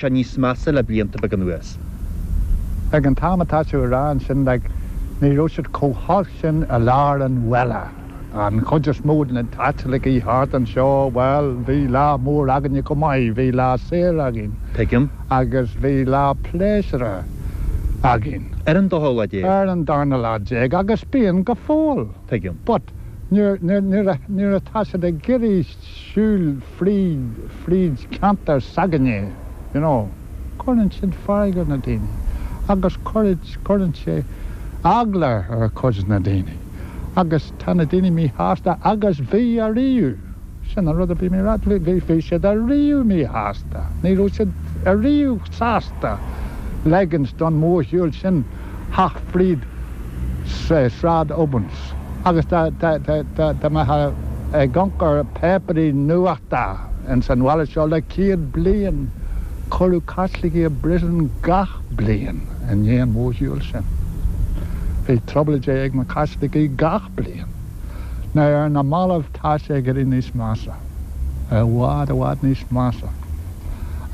sé níos measa le blianta beaga anuas. Ag an t-am atá tú a rá ansin, like, ní raibh siad chomh holc sin i lár an bhaile. An chuid is mó de na Caitlicigh thart anseo, bhuel, bhí lá mór againne chomh maith, bhí lá saor againn. Tuigim. Agus bhí lá pléisiúir againn. Ar an dara lá déag. Ar an darna lá déag, agus bíonn go fóill. Tuigim. But nuair atá siad ag iarraidh siúl fríd fríd ceantar s'againne, you know. Cuireann siad fearg ar na daoine agus cuireann sé eagla ar chuid na daoine agus tá na daoine míshásta agus bhí ariamh. Sin an rud a bhí mé rá, bhí bhí bhí siad ariamh míshásta, ní raibh siad ariamh sásta ligint don mhórshiúl sin. theacht fríd Sráid Obins agus dá mbeifeá ag amharc ar páipéirí nuachta ins an bhaile seo le céad bliain, cuireadh Caitlicigh i bpríosún gach bliain i ndiaidh an mhórshiúil sin. Bhí trioblóidí ag na Caitlicigh gach bliain. Now ar na mallaibh tá sé ag éirí níos measa, i bhfad, i bhfad níos measa.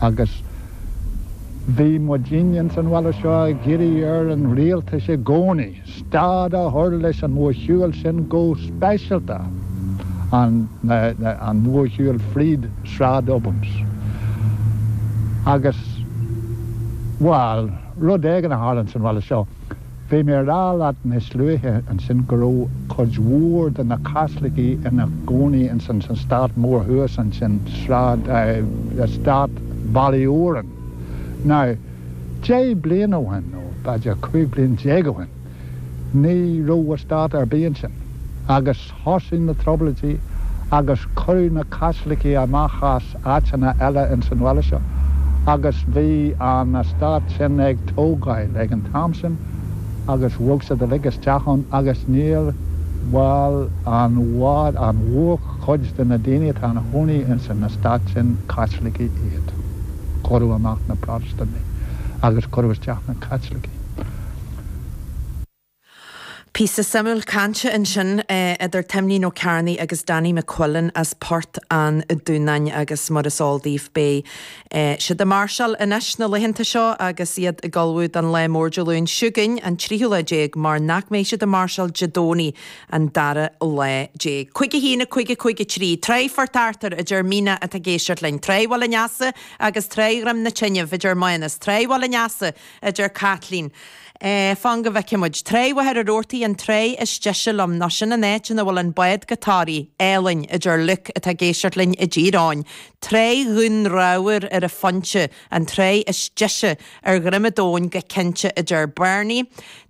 Agus. Bhí muidinne ins an bhaile seo ag iarraidh ar an Rialtas i gcónaí stad a chur leis an mhórshiúil sin, go speisialta an mhórshiúil fríd Sráid Obins. Agus, bhuel, rud éigin a tharla ins an bhaile seo. Bhí mé a rá leat níos luaithe ansin go raibh cuid mhór de na Caitlicigh ina gcónaí ins an eastát mór thuas ansin, Sráid, eh, eastát Ballyoran. Now, deich bliain ó shin, nó b'fhéidir cúig bliain déag ó shin, ní raibh eastát ar bith ansin. Agus. Thosaigh na Trioblóidí agus cuireadh na Caitlicigh amach as áiteanna eile ins an bhaile seo agus bhí an eastát sin ag tógáil ag an t-am sin agus bhog siad uilig isteach ann agus now, bhuel, an mhór, an mhórchuid de na daoine atá ina gcónaí ins an eastát sin, Caitlicigh iad. Cuireadh amach na Protastúnaigh agus cuireadh isteach na Caitlicigh. Píosa suimiúil cainte ansin idir Timlín Ó Cearnaigh agus Danny McQuillan as Port an Dúnáin agus mar is eol daoibh beidh siad ag máirseáil anois na laethanta seo agus iad ag ullmhú don lá mór Dé Luain seo chugainn an tríú lá déag mar nach mbeidh siad ag máirseáil Dé Domhnaigh an dara lá déag. Cúig a haon, a cúig, a cúig a trí. Tráigh Phort Arthur, a deir Míne atá ag éisteacht linn. Tráigh Bhaile an Easa agus Tráigh Dhroim na Tineadh, a deir Mánas. Tráigh Bhaile an Easa. a deir Caitlín. Eh, fan go bhfeicfidh muid. Tráigh Mhachaire Rabhartaigh, an tráigh is deise liom, ná sin an áit ina bhfuil an bád go Toraigh, álainn, a deir Luke, atá ag éisteacht linn i dTír Eoghain. Tráigh Dhún Reamhar ar an Phointe, an tráigh is deise ar dhroim an domhain go cinnte, a deir Barney.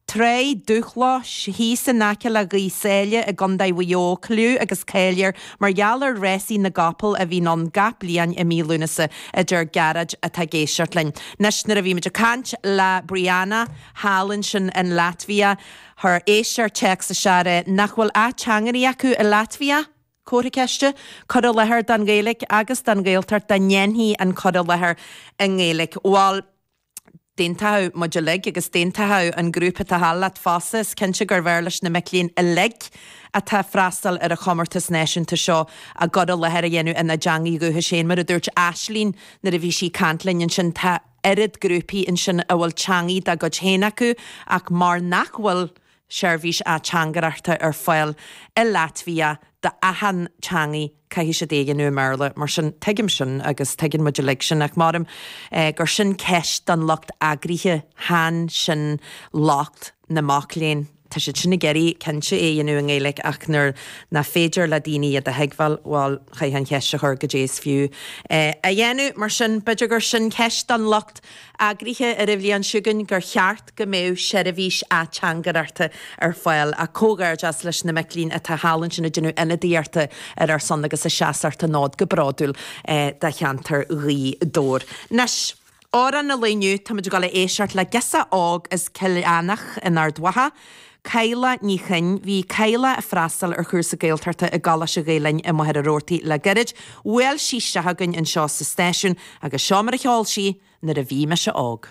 Tráigh Dumha Locha thíos in aice le Gaoth Sáile i gCondae Mhaigh Eo cliú agus cáil air mar gheall ar rásaí na gcapall a bhíonn ann gach bliain i mí Lúnasa a deir Gearóid atá ag éisteacht linn anois nuair a bhí muid ag caint le Brianna thall ansin in Latvia chuir éisteoir téacs isteach nach bhfuil ateangairí acu i Latvia? Comhartha ceiste? Cur i láthair don Ghaeilic agus don Ghaeltacht dá ndéanfaí an cur i láthair i nGaeilic? Bhal. d'aontóchadh muid uilig agus d'aontóchadh an grúpa atá thall leat fosta, is cinnte gurbh fhearr leis na mic léinn uilig atá ag freastal ar an chomórtas náisiúnta seo a gcur i láthair a dhéanamh ina dteangaidh dhúchais féin. Mar a dúirt Aisling nuair a bhí sí ag caint linn ansin, tá oiread grúpaí ansin a bhfuil teangaidh dá gcuid féin acu ach mar nach bhfuil seirbhís ateangaireachta ar fáil i Laitvia d'achan teangaidh, caithfidh siad é a dhéanamh i mBéarla. Mar sin, tuigim sin agus tuigeann muid uilig sin, ach maram gur sin ceist don lucht eagraithe, chan sin locht na mac léinn. Tá siad sin ag iarraidh, cinnte, é a dhéanamh i nGaeilge, ach nuair nach féidir le daoine iad a thuigbheáil, bhuel, chaithfeá an cheist a chur, goidé is fiú é a dhéanamh? Mar sin, b'fhéidir gur sin ceist don lucht eagraithe ar an bhliain seo chugainn, gur cheart. go mbeadh seirbhís ateangaireachta ar fáil, ach comhghairdeas leis na mic léinn atá thall ansin ag déanamh ionadaíochta ar ár son agus ag seasacht an fhóid go bródúil do cheantar Ghaoth Dobhair. Anois, Amhrán an lae inniu, táimid ag dul a éisteacht le girseach óg as Coilleach Eanach in Ard Mhacha, Cadhla Ní Choinn. Bhí Cadhla ag freastal ar chúrsa Gaeltachta i gColáiste Ghael-Linn i Machaire Rabhartaigh le gairid. Bhuail sí isteach chugainn anseo sa stáisiún agus seo mar a cheol sí Nuair a bhí mise óg.